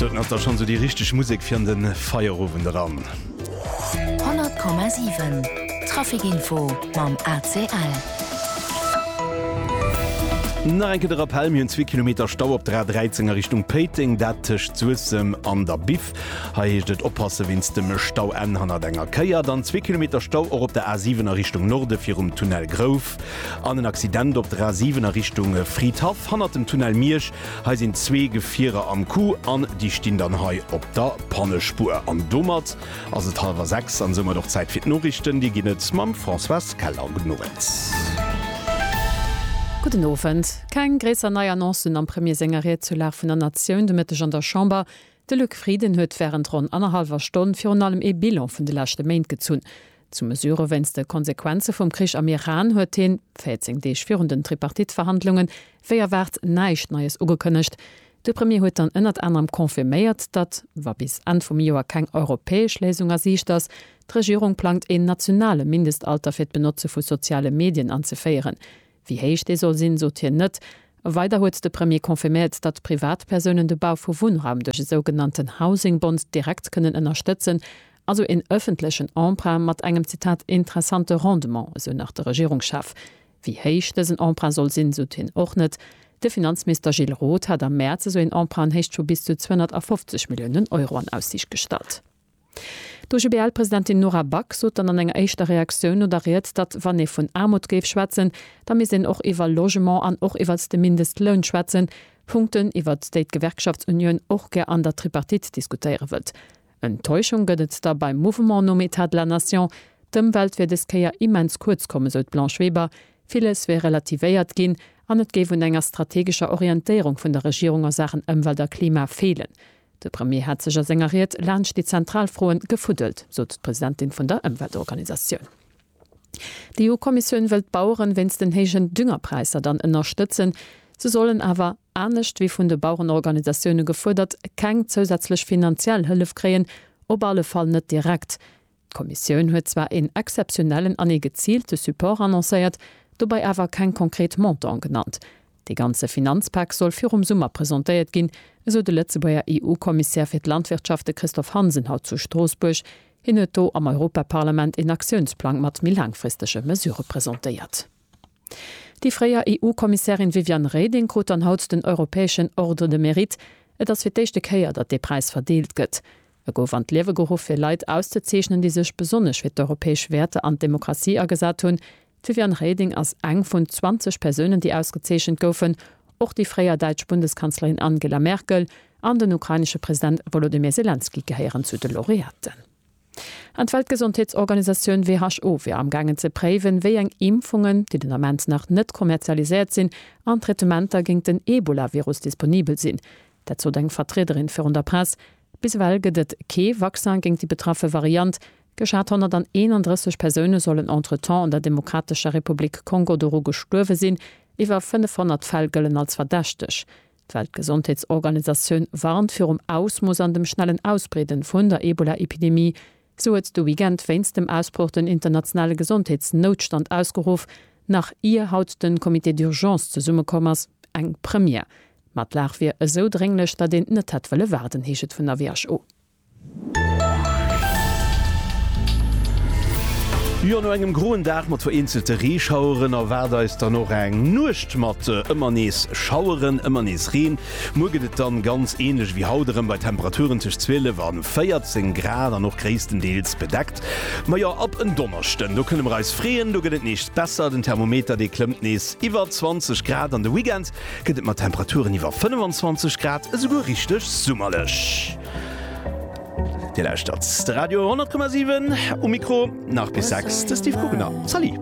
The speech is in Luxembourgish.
Doten ass da schonn sou déi richteg Musek fir an de Feierowend eran. 100,7 Traficinfo mam ACL. Nach eng Kéier de Rappell, Mir hunn zwee Kilometer Stau op der A 13 a Richtung Péiteng, dat tëscht Suessem an der Biff. Hei heescht et oppasse wéinst dem Stau, Enn hannert enger Kéier. Dann zwee Kilometer Stau och op der A 7 a Richtung Norde virum Tunnel Grouv. An en Accident op der A7 a Richtung Fridhaff, hannert dem Tunnel Miersch. Hei sinn zwee Gefierer am Coup an déi stinn dann hei op der Pannespur. An domat ass et hallwer sechs an soumat och Zäit fir d'Noriichten. Dir ginn et mam Françoise Keller. Gudden Owend. Gudden Owend. Keng gréisser nei Annoncen am Premier senger Ried zur Lag vun der Natioun de Mëtteg an der Chamber. De Luc Frieden huet wärend ronn annerhallwer Stonn virun allem ee Bilan vun de leschte Méint gezunn. Zu Mesure wéinst de Konsequenze vum Krich am Iran huet hien, 14 Deeg virun den Tripartite-Verhandlungen, wéi erwaart näischt Neies ugekënnegt. De Premier huet dann ënnert anerem confirméiert, datt, wa bis Enn vum Joer keng europäesch Léisung a Siicht ass, d'Regierung plangt een nationale Mindestalter fir d'Benotze vu soziale Medien anzeféieren. Wéi héich dee soll sinn, sot hien net. Weider huet de Premier confirméiert, datt Privatpersounen de Bau vu Wunnraum duerch e sougenannten Housing Bond direkt kënnen ënnerstëtzen, also een ëffentlechen Emprunt mat engem, Zitat, interessante Rendement, esou nach de Regierungschef. Wéi héich dësen Emprunt soll sinn, sot hien och net. De Finanzminister Gilles Roth hat am Mäerz esou een Emprunt an Héicht vu bis zu 250 Milliounen Euro an Aussiicht gestallt. D'OGBL-Presidentin Nora Back sot dann an enger éischter Reaktioun no der Ried, datt wann ee vun Aarmut géif schwätzen, da misst een och iwwer Logement an och iwwert de Mindestloun schwätzen, Punkten, iwwert déi d'Gewerkschaftsunioun och gär an der Tripartite diskutéiere wëllt. Enttäuschung gëtt et da beim Mouvement nom Etat de la Nation. D'Ëmwelt wier des Kéier immens kuerz komm, esou d'Blanche Weber. Villes wier relativéiert ginn an et géif un enger strategescher Orientéierung vun der Regierung a Saachen Ëmwelt a Klima feelen. De Premier hätt sech a senger Ried laanscht déi zentral Froen gefuddelt, sot d'Presidentin vun der Ëmweltorganisatioun. D'EU-Kommissioun wëll d'Baueren wéinst den héijen Düngerpräisser dann ënnerstëtzen. Se sollen awer, anescht wéi vun de Bauerenorganisatioune gefuerdert, keng zousätzlech finanziell Hëllef kréien, op alle Fall net direkt. D'Kommissioun huet zwar een exzeptionellen an ee geziilte Support annoncéiert, dobei awer keng konkret Montanten genannt. Dee ganze Finanzpak soll virum Summer presentéiert ginn, esou de Lëtzebuerger EU-Kommissär fir d'Landwirtschaft, de Christophe Hansen, haut zu Stroossbuerg. Hien huet do am Europaparlament een Aktiounsplang mat méi laangfristege Mesurë presentéiert. Déi fréier EU-Kommissärin Viviane Reding krut dann haut den europäeschen Ordre de Mérite. Et ass fir d'éischte Kéier, datt dee Präis verdeelt gëtt. E gouf an d'Liewe geruff fir Leit auszezeechnen, déi sech besonnesch fir d'europäesch Wäerter an d'Demokratie agesat hunn. D'Viviane Reding ass eng vun 20 Persounen, déi ausgezeechent goufen. Och déi fréier däitsch Bundeskanzlerin Angela Merkel an den ukrainesche President Wolodymyr Selenskyj gehéieren zu de Laureaten. An d'Weltgesondheetsorganisatioun WHO wier amgaangen ze préiwen, wéi eng Impfungen, déi den Ament nach net kommerzialiséiert sinn, an Traitementer géint den Ebola-Virus disponibel sinn. Dat sot eng Vertriederin virun der Press. Bis ewell gëtt et kee Vaccin géint déi betraffe Variant. Geschat 131 Persoune sollen entretemps an der Demokratescher Republik Kongo doru gestuerwe sinn. Iwwer 500 Fäll gëllen als verdächteg. D'Weltgesondheetsorganisatioun warnt virum Ausmooss an dem schnellen Ausbreeden vun der Ebola-Epidemie. Sou huet de Weekend wéinst dem Ausbroch den internationale Gesondheetsnoutstand ausgeruff, nach ier haut de Comité d'urgence zesummekomm ass. Eng Première. Ma d'Lag wier esou drénglech, datt een net hätt wëlle waarden, heescht et vun der WHO. Jo, no engem groen Dag mat vereenzelte Reeschaueren erwaart eis dann och eng Nuecht mat ëmmer nees Schaueren, ëmmer nees Reen. Muer gëtt et dann ganz ähnlech ewéi haut erëm bei Temperaturen tëscht 12 an 14 Grad an och gréisstendeels bedeckt. Majo ab en Donneschden do kënne mer eis freeën, do gëtt et nees besser, den Thermometer dee klëmmt nees iwwer 20 Grad an de Weekend gëtt et mat Temperaturen iwwer 25 Grad esouguer richteg summerlech. Dir lauschtert de Radio 100,7, um Mikro nach bis 6 de Steve Guggenau. Salut.